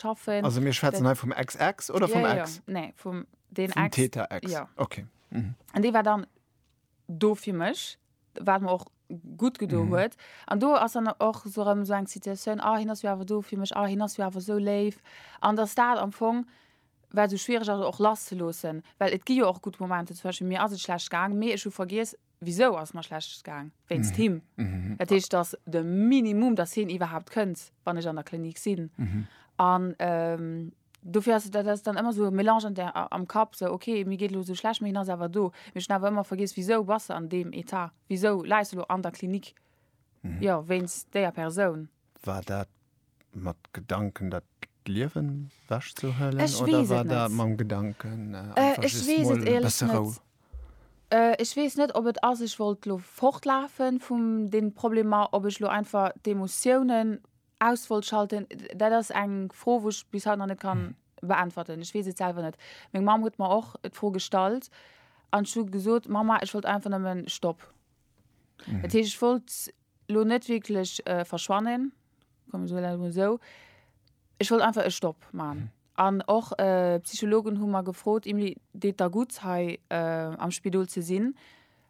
schaffen. Also mir schwätzen hei vum Ex-Ex oder vum ja, Ex? Ja. Nee, vum den vum Ex. Täter Ex. Ja. Okay. Mhm. An dee war dann do fir mech, wat mer och gut gedo mhm. huet. An do ass an och so ëm so eng Situatioun a ah, hin ass awer do fir mech a ah, hin ass awer so léif. An der Staat am Fong war so schwierig also och lass ze losen, Well et gi jo och gut Momente zwësche mir ass et schlecht gang, mee ech hu vergiees Wisou ass mer schlecht gaang? Wéinst him. Dat heescht, dass de Minimum, dass hien iwwerhaupt kënnt, wann ech an der Klinik sinn. An dofir ass, dat ass dann ëmmer esou e Mélange an der, am Kapp, esou, ok, mir geet elo esou schlecht, mee hien ass awer do. Mee ech hunn awer ëmmer vergiess, wisou bass de an deem Etat? Wisou läis de elo an der Klinik? Jo, wéinst déier Persoun. War dat mat Gedanken dat Liewen wäsch ze huelen oder war dat mam Gedanken besse Rou? Ech weess net ob et ass ech wollt lo fortlafe vum den Problemer, ob ech lo einfach d'Emotiounen aus wollt schalten, dat ass eng Fro wou ech bis haut nach net kann beäntwerten. Ech weess et selwer net. Meng Mamm huet mer och d'Fro gestallt an ech hu gesot, Mamma ech wollt einfach nëmmen Stopp. Dat heescht ech wollt lo net wierklech verschwannen, soen mir dat emol esou. Ech wollt einfach e Stopp maachen. An och d'Psychologen hu mer gefrot, Emilie, deet der gutt hei am Spidol ze sinn?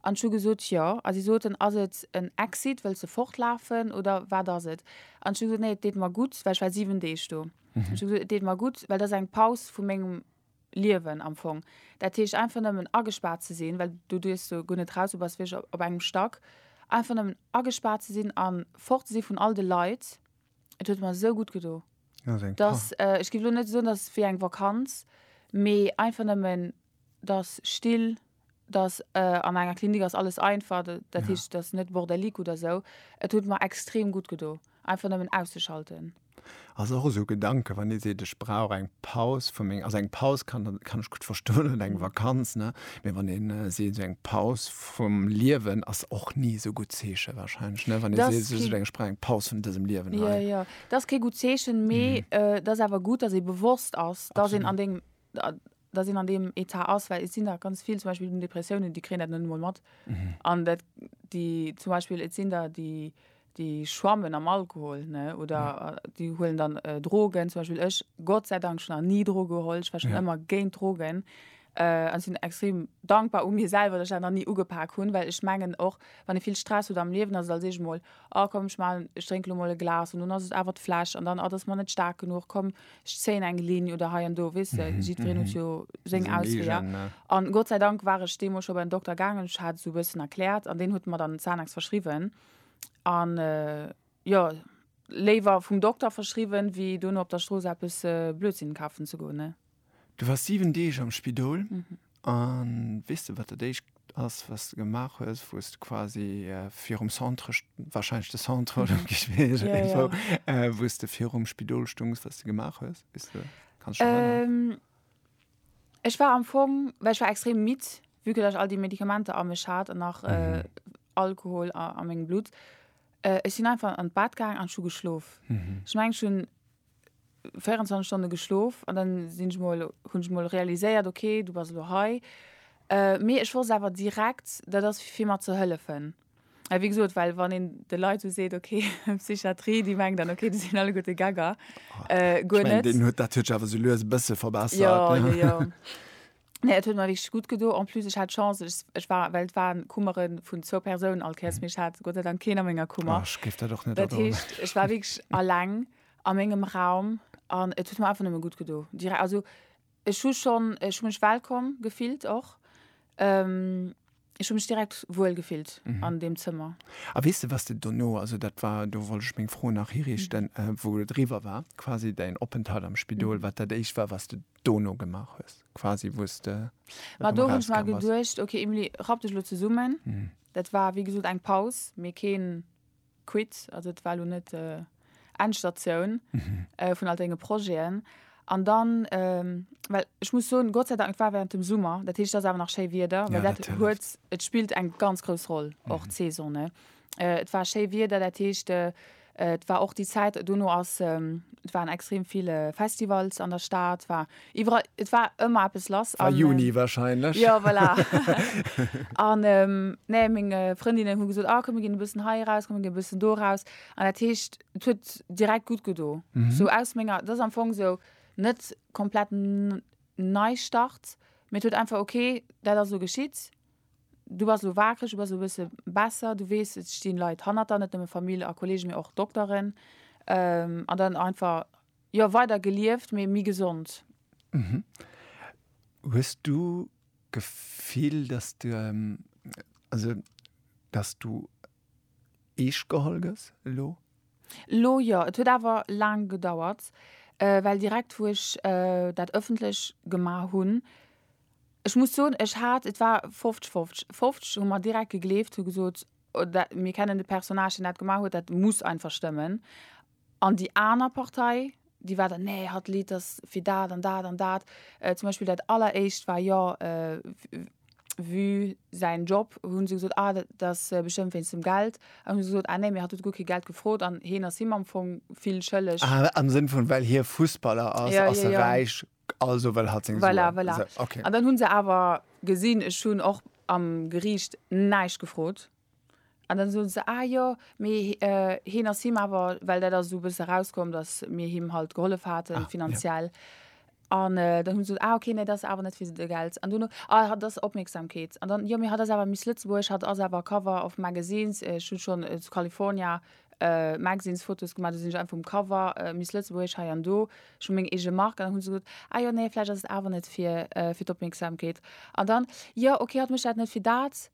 An ech hu gesot, jo. A si soten, ass et en Exit, wëlls de fortlafen oder wat ass et? An ech hu gesot, nee, et deet mer gutt, well ech war siwen Deeg do. Ech hu gesot, et deet mer gutt, well dat ass eng Paus vu mengem Liewen am Fong. Dat heescht einfach nëmmen agespaart ze sinn, well du duerchs jo guer net raus, du bass wierklech op engem Stack, einfach nëmmen agespaart ze sinn a fort ze si vun all de Leit. Et huet mer esou gutt gedo, dass, ech géif elo net soen, dass et wéi eng Vakanz, mee einfach nëmmen, dass still dass an enger Klinik ass alles einfach, dat dat Ja. heescht, et ass net bordelique oder esou. Et huet mer extrem gutt gedo, einfach nëmmen auszeschalten. Ass och esou e Gedanke, wann ee seet, ech brauch eng Paus vu meng, also eng Paus kann der, kann ech gutt verstoen oder eng Vakanz, ne, mee wann een seet, esou eng Paus vum Liewen ass och ni esou gutt Zeeche wahrscheinlech, ne, wann ee Dat seet, ass esou kee- eng, ech brauch eng Paus vun dësem Liewen hei. Jo, jo, dat ass kee gutt Zeechen, mee et ass awer gutt, dass ee bewosst ass, dass een an Absolut. dengem, dass een an deem Etat ass, well et sinn der ganz vill, zum Beispill un Depressiounen, déi kréien dat net emol mat. An dat, déi zum Beispiel, et sinn der, déi, déi schwammen am Alkohol, ne, oder déi huelen dann Drogen. Zum Beispiel ech, Gott sei Dank, ech hunn nach ni Droge geholl, ech war schonn ëmmer géint Drogen. An ech sinn extrem dankbar u mir selwer, dass ech dat nach ni ugepak hunn, well ech mengen och, wann ee vill Stress huet am Liewen, ass et als éischt emol Oh komm, ech maachen, ech drénke lo mol e Glas an dunn ass et awer d'Fläsch an dann, ah dat ass mer net staark genuch, komm ech zéien eng Linn oder hei an do, weess de, jiddwereen huet jo seng Seng Ausweeër. eegen, ja. An Gott sei Dank war ech deemools scho bei den Dokter gaangen, ech hat esou e bëssen erkläert an deen huet mer dann Xanax verschriwwen an jo, léiwer vum Dokter verschriwwen, wéi dono op der Strooss eppes Blödsinn kafen ze goen, ne. Du wars 7 Deeg am Spidol an weess de wat dat éischt ass wat de gemaach hues wou's de quasi virum Centre, wahrscheinlech de Centre oder wéi ech weess net wou, wou's de virum Spidol stongs wat de gemaach hues? Weess de, kanns dech erënneren? Ech war am Fong, well ech war extrem midd vue que dat ech all déi Medikamenter a mech hat an nach Alkohol a mengem Blutt, ech sinn einfach an d'Bad gaang an ech hu geschlof. Ech mengen ech hunn 24 Stonne geschlof an dann sinn ech mol hunn ech mol realiséiert okay du bass elo hei äh, mee ech wosst awer direkt dat ass fir fir mat ze hëllefen well wéi gesot well wann een de Leit esou seet okay Psychiatrie déi mengen dann okay déi sinn alleguerte Gegger äh, guer net. Deen huet dat huet sech awer sou lues e bësse verbessert. Jo jo jo. Nee, et huet mer wierklech gutt gedo. En plus, ech hat Chance, ech, ech war, well et waren Kummere vun zwou Persounen all Kéiers, mee ech hat Gott sei Dank keen a menger Kummer. Ech géif dat och net Dat adoen. heescht, ech war wierklech alleng a mengem Raum an et huet mer einfach nëmme gutt gedo. Direkt, also ech hu schonn, ech hu mech wellkomm gefillt och. Ech hu mech direkt wuel gefillt an deem Zëmmer. A weess de, was de dono, also dat war, do wollt ech meng Fro nach hiriichten, wou et eriwwer war, quasi däin Openthalt am Spidol, wat dat Éischt war, wat de dono gemaach hues, quasi wou s de erëm erausgaange bass? Ma do hunn ech mer geduecht, okay Emilie, rapp dech elo zesummen. Dat war, wéi gesot, eng Paus, mee keen. quitt, also et war elo net Endstatioun vun all denge Projeten. An dann, well ech muss soen, Gott sei Dank, et war während dem Summer, dat heescht et ass awer nach schéi Wieder, well dat huet, et spillt eng ganz grouss Roll och d'Saison, ne. Et war schéi Wieder, dat heescht et war och déi Zäit, dono ass, et waren extrem vill Festivals an der Stad, war Iwwerall, et war ëmmer eppes lass. War Juni warscheinlech. Jo, voilà. An, nee, meng Frëndinnen hu gesot, ah, komm mir ginn e bëssen hei eraus, komm mir ginn e bëssen do eraus. An dat heescht, et huet direkt gutt gedo. Sou aus menger, et ass am Fong sou net komplett Neistart, mee et huet einfach, okay, dat ass elo geschitt, du bass elo waakreg, du bass elo e bësse besser, du weess, et stinn Leit hanner der, net nëmme Famill a Kollegen, mee och Dokteren. An dann einfach Jo weider gelieft mee mi gesond. Mhm. Hues du Gefill dass du also dass du eescht geholl gëss elo? Elo jo. Et huet awer laang gedauert well direkt wou ech dat ëffentlech gemaach hunn, ech muss soen ech hat, et war 50 50, 50 hu mer direkt gegleeft, hu gesot mir kennen de Personnage deen dat gemaach huet, dat muss einfach stëmmen An déi aner Partei, déi war dann, nee, hatt Lidd ass fir dat an dat an dat. Zum Beispill dat alleréischt war jo Vue säin Job. Hu se gesot, ah dat ass bestëmmt wéinst dem Geld. An hu se gesot, ah nee, mir hat huet guer kee Geld gefrot an heen ass him am Fong vill schëlleg. Ah, am Sënn vun, well hie Fussballer ass, ass e räich, also wëll hatt seng Suen. Voilà, voilà. An dann hu se awer gesinn, ech hunn och am Geriicht näischt gefrot. An dann soen se, ah jo, mee heen ass him awer, well dat ass esou e bësse erauskomm, dass mir him halt gehollef haten finanziell. An dann hunn se gesot, ah ok, nee, dat ass awer net fir de Geld. An dono, ah hatt ass Opmierksamkeet. An dann, jo, mee hatt ass awer Miss Lëtzebuerg, hatt ass awer Cover of Magazines, ech hu schonn zu California Magazines Fotos gemaach, do sinn ech einfach um Cover, Miss Lëtzebuerg hei an do, ech hu meng eege Mark. An dann hunn se gesot, ah jo, nee, vläicht ass et awer net fir d'Opmierksamkeet. An dann, jo, ok, hatt mécht dat net fir dat,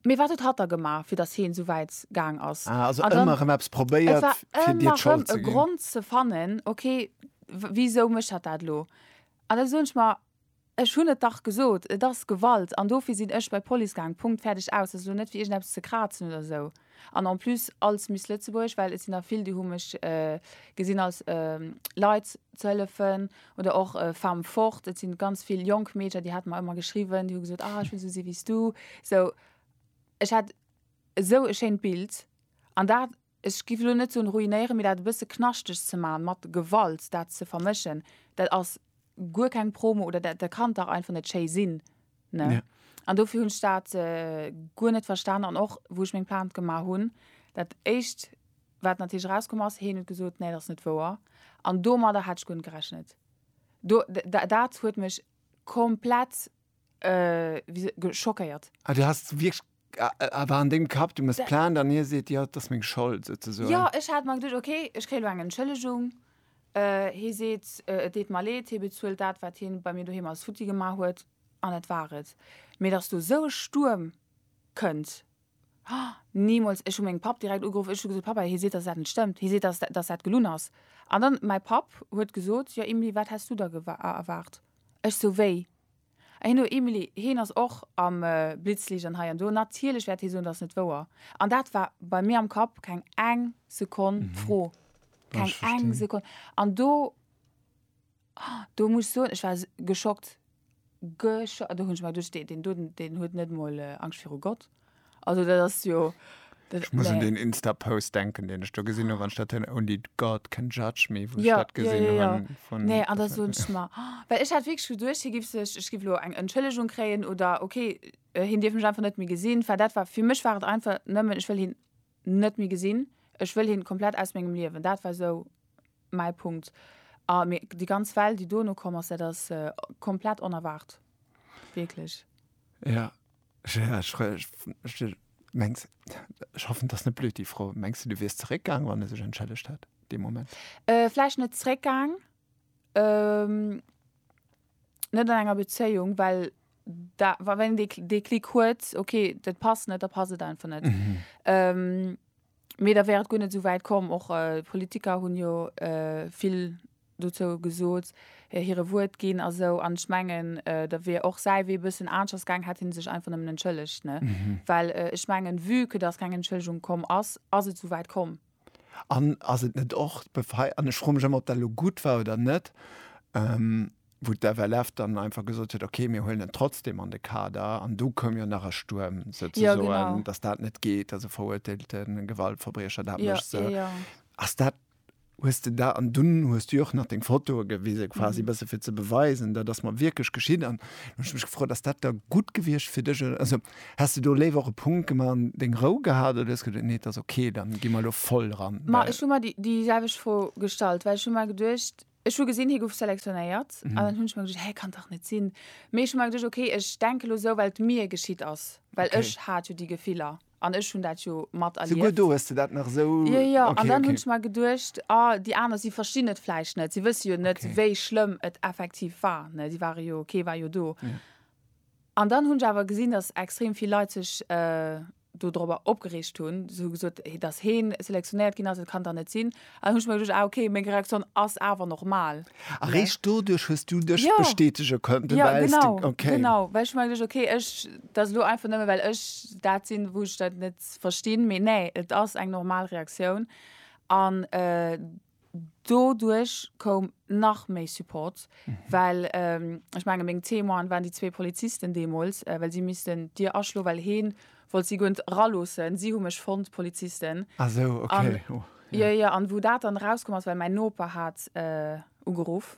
Mee wat huet hatt da gemaach, fir datt heen esou wäit gaang ass? Ah, also ëmmer erëm eppes probéiert, fir dir d'Schold ze ginn. Et war ëmmer erëm e Grond ze fannen, okay, wisou mécht hatt dat elo? An da soen ech mer, ech hunn et dach gesot, et ass Gewalt an dofir sinn ech bei d'Police gaang, Punkt, fäerdeg, aus. Dat ass elo net fir iergendeppes ze krazen oder esou. An en plus als Miss Lëtzebuerg, well et sinn der vill, déi hu mech gesinn als Leit ze hëllefen oder och Femme forte. Et si ganz vill jonk Meedercher, déi hate mer ëmmer geschriwwen, déi hu gesot, ah ech wëll esou si wéi s du. Sou ech hat esou e schéint Bild an dat, ech giff elo net soen ruinéieren, mee dat e bësse knaschteg ze maachen, mat Gewalt dat ze vermëschen, dat ass guer keng Promo oder dat kann dach einfach net schéi sinn. Ne? Ja. An dofir hunn ech dat äh, guer net verstan an och wou ech meng Plainte gemaach hunn, dat éischt wat natierlech rauskomm ass, heen huet gesot, nee, dat ass net wouer. An domadder hat ech guer net gerechnet. Do, da, dat huet mech komplett äh, wie se- ge- schockéiert. Ah, du hast wirklich a war an dengem Kapp, du muss Plainte an hie seet, jo, et ass meng Schold souzesoen. Jo, ech hat mer geduecht, ok, ech kréie lo eng Entschëllegung, hie seet, et deet mer leed, hie bezuelt dat, wat hien bei mir doheem alles futti gemaach huet, an dat war et. Mee datt do esou e Stuerm kënnt, nimools! Ech hu meng Papp direkt ugeruff, ech hu gesot, Pappa, hie seet, datt dat net stëmmt, hie seet, datt dat gelunn ass. An dann mäi Papp huet gesot, jo, Emilie, wat häss du der erwaart? Ech sou, wéi? Heen no Emily, heen ass och am Blitzlicht an hei an do. Natierlech wäert hee soen, dat ass net wouer. An dat war bei mir am Kapp keng eng Sekonn d'Fro. Keng eng Sekonn. An do, do muss ech soen, ech war geschockt. Geschockt. Do hunn ech mer geduecht, deen do, deen huet net emol Angscht viru Gott. Also dat ass jo. Ech muss un den Insta-Post denken, den ech do gesinn hunn, wann ech dat hënn, Only God can judge me, wou ech dat gesinn hunn. Ja, ja, ja. Nee, an da soen ech mer, well ech hat wierklech geduecht, hie giff sech, ech giff elo eng Entschëllegung kréien oder okay, hien dierf mech einfach net méi gesinn, well dat war, fir mech war et einfach nëmmen, ech wëll hien net méi gesinn, ech wëll hien komplett aus mengem Liewen. Dat war esou mäi Punkt. A mee déi ganz Well, déi dono komm ass, dat ass komplett onerwaart, wierklech. Ja. Ja, ech, ech, ech, ech mengs, ech hoffen, dass net blöd déi Fro. Mengs du, du wiers zeréckgaang, wann e sech entschëllegt hätt dee Moment? Äh, vläicht net zeréckgaang, ähm, net an enger Bezéiung, well da, wa, wann een dee, dee Klick huet, okay, dat passt net, da passt et einfach net. Ähm. Mee da wär et guer net esou wäit komm. Och Politiker hunn jo vill dozou gesot, hire Wuert ginn a sou. An ech mengen, da wier och säi Wee e bëssen aneschters gaang, hätt hie sech einfach nëmmen entschëllegt, ne? Well ech mengen, vue que dass keng Entschëllegung komm ass, ass et esou wäit komm. An ass et net och d'Befreiung, an ech froe mech ëmmer, ob dat elo gutt war oder net, wou d'FLF dann einfach gesot huet, okay, mir huelen en trotzdem an de Kader. An du koum jo nach e Stuerm, souzesoen, dass dat net geet, dass e veruerteelte Gewaltverbriecher dat mécht. Ass dat, hues de dat, an dunn hues du jo och nach deng Fotoe gewise quasi e bësse fir ze beweisen, dat ass mar wierklech geschitt. An du hues mech gefrot, ass dat da gutt gewiescht fir dech? Also häss de do léiwer och e Punkt gemaach an deng Rou gehat oder hues geduecht, nee, et ass okay, da gi mer elo voll dran? Ma ech hu mer déi selwecht Fro gestallt, well ech hu mer geduecht, Ech hu gesinn, hie gouf selektionéiert, an dann hunn ech mer geduecht, hä, kann dach net sinn. Mee ech hu mer geduecht, okay, ech denke lo esou, well et mir geschitt ass, well Okay. ech hat jo déi Gefiller an ech hunn dat jo Souguer materlieft. do hues de dat nach esou, Jo, jo, an okay, dann hunn okay. ech mer geduecht, ah, déi aner, si verstinn et vläicht net, si wësse jo net, Okay. wéi schlëmm et effektiv war, ne, si ware jo, kee war jo do. Ja. An dann hunn ech awer gesinn, datt extrem vill Leit sech dodrobber opgereegt hunn, sou gesot, dass heen selektionéiert ginn ass, et kann dann net sinn. An hunn ech mer geduecht, ah okay, meng Reaktioun ass awer normal. A réischt doduerch hues du dech jo bestätege konnten, ja genau, okay, genau, well ech mer geduecht, okay, ech, et ass elo einfach nëmme well ech dat sinn, wou ech dat net verstinn, mee nee, et ass eng normal Reaktioun an. Doduerch koum nach méi Support, well ech menge meng Témoinen waren déi zwee Polizisten deemools, well si missten d'Dier aschloen, well hee wollt si guer net eraloossen. Si hu mech fonnt, d'Polizisten. Ah esou, okay, oh. Jo, jo, an wou dat dann erauskomm ass, well mäin Noper hat ugeruff,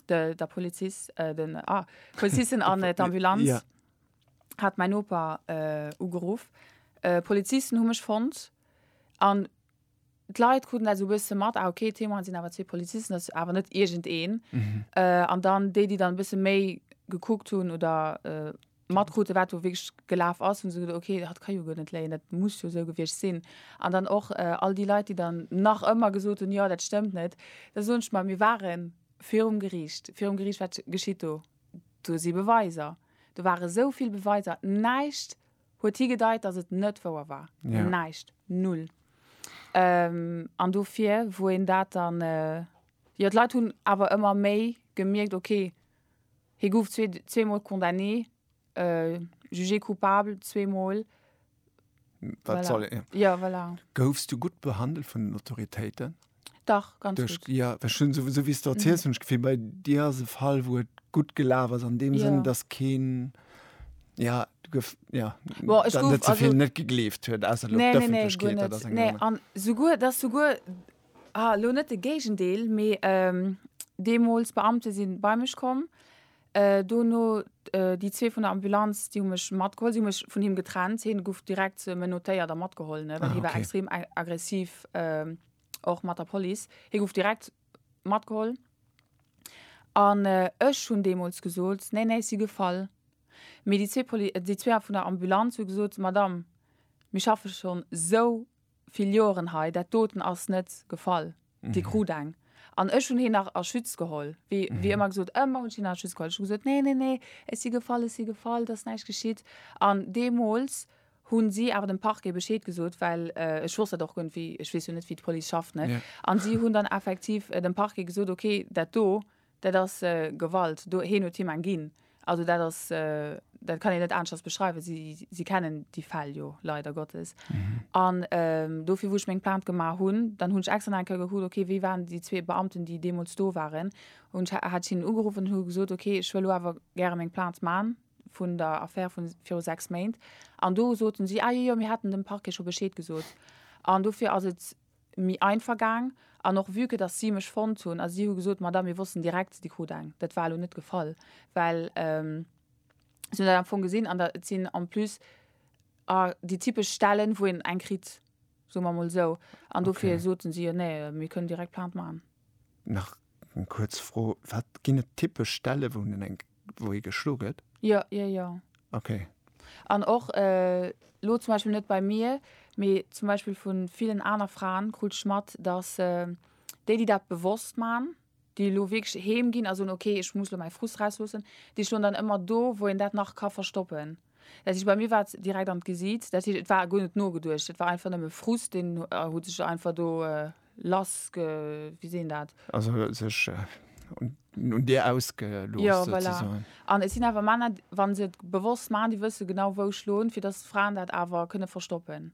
de Polizist, den Polizisten an d'Ambulanz hat mäin Noper ugeruff. D'Polizisten hu mech fonnt an d'Leit kruten dat esou e bësse mat, ah ok, d'Témoine sinn awer zwee Polizisten, dat ass awer net iergendeen. An dann déi, déi dann e bësse méi gekuckt hunn oder matkruten, wat do wierklech gelaf ass, hu se geduecht, ok, dat ka jo guer net léien, dat muss jo esou gewiescht sinn. An dann och all déi Leit, déi dann nach ëmmer gesot hunn, jo, dat stëmmt net. Da soen ech mer, mir ware virum Geriicht. Virum Geriicht, wat geschitt do? Do si Beweiser. Do ware esou vill Beweiser. Näischt Huet higedeit, dass et net wouer war. Ja. Näischt. Null. An dofir, wou een dat dann, jo, d'Leit hunn awer ëmmer méi gemierkt, okay, hie gouf zwee, zweemol condamné, jugé coupable zweemol, Wat soll, ja. Jo, voilà. Goufs du gutt behandelt vun den Autoritéiten? Dach ganz Duerch, gutt. Ja, well schon esou wéi s de erziels, hunn ech d'Gefill, bei dir ass e Fall, wou et gutt gelaf ass an deem Sënn, Ja. dass keen, ja, du gouf, ja, Bon, ech dann gouf net ze also vill net gegleeft huet, ausser elo Nee, nee, nee, guer d'Ëffentlechkeet, dat ass net. eng Nee, aner. an souguer, dass souguer, ah, elo net de Géigendeel, mee, ähm, deemools Beamte si bei mech komm, Dono déi zwee vun der Ambulanz, déi hu mech matgeholl. Si hu mech vun him getrennt. Hie gouf direkt menotéiert a matgeholl, ne, well hie war extrem aggressiv, och mat der Police. Hie gouf direkt matgeholl. An ech hunn deemools gesot, Nee, nee, ech si gefall. Mee déi zwee vun der Ambulanz hu gesot, Madame, mir schaffe schonn esou vill Joeren hei, dat doten ass net gefall, dee krut eng. An ech hunn heen nach a Schütz geholl, wéi wéi ëmmer gesot, ëmmer hunn ech heen a Schütz geholl. Ech hu gesot, nee, nee, nee, ech si gefall, ech si gefall, et ass näischt geschitt. An deemools hu si awer dem Parquet Bescheed gesot, well ech wosst dat och guer net, wéi, ech weess jo net, wéi d'Police schafft, ne? An si hunn dann effektiv dem Parquet gesot, okay, dat do, Dat ass Gewalt. Do, heen huet him eng ginn. Also dat ass, dat kann een net aneschters beschreiwen. Si, si kennen déi Fäll jo leider Gottes. An dofir, wou ech meng Plainte gemaach hunn, dann hunn ech extra nach eng Kéier gekuckt, okay, wie waren déi zwee Beamten, déi deemools do waren. Hunn ech, hat ech hinnen ugeruffen an hu gesot, okay, ech wëll elo awer gäre meng Plainte man vun der Affär vu viru sechs Méint. An do soten si, ah jo, jo, mir haten dem Parquet scho Bescheed gesot. An dofir ass et mi einfach gaang an och vue que dass si mech fonnt hunn a si hu gesot, Madame, mir wossten direkt, Dir krut eng. Dat war elo net gefall, well si hunn dat am Fong gesinn an da, et sinn en plus déi typesch Stellen, wou een eng kritt, soe mer emol esou, an dofir soten si, jo nee, mir kënnen direkt Plainte maachen. Nach eng kuerz Fro, Wat ginn et typesch Stellen, wou een eng. Wou hie geschlo gëtt? Jo, jo, jo. Okay. An och elo zum Beispill net bei mir, mee zum Beispill vu villen aner Fraen krut ech mat, datt déi, déi dat bewosst man, déi elo wierklech heem ginn a soen, okay, ech muss elo mäi Frust rausloossen, déi stoen dann ëmmer do, wou een dat nach ka verstoppen. Dat heescht, bei mir war et direkt an d'Gesiit. Dat heescht, et war guer net nogeduecht. Et war einfach nëmme Frust, deen huet sech einfach do lass ge. Wéi seet een dat? Also sech un dir ausgelooss. Jo, voilà. An et sinn awer Männer, wa se et bewosst maachen, déi wësse genau, wou schloen, fir datt Fraen dat awer kënne verstoppen.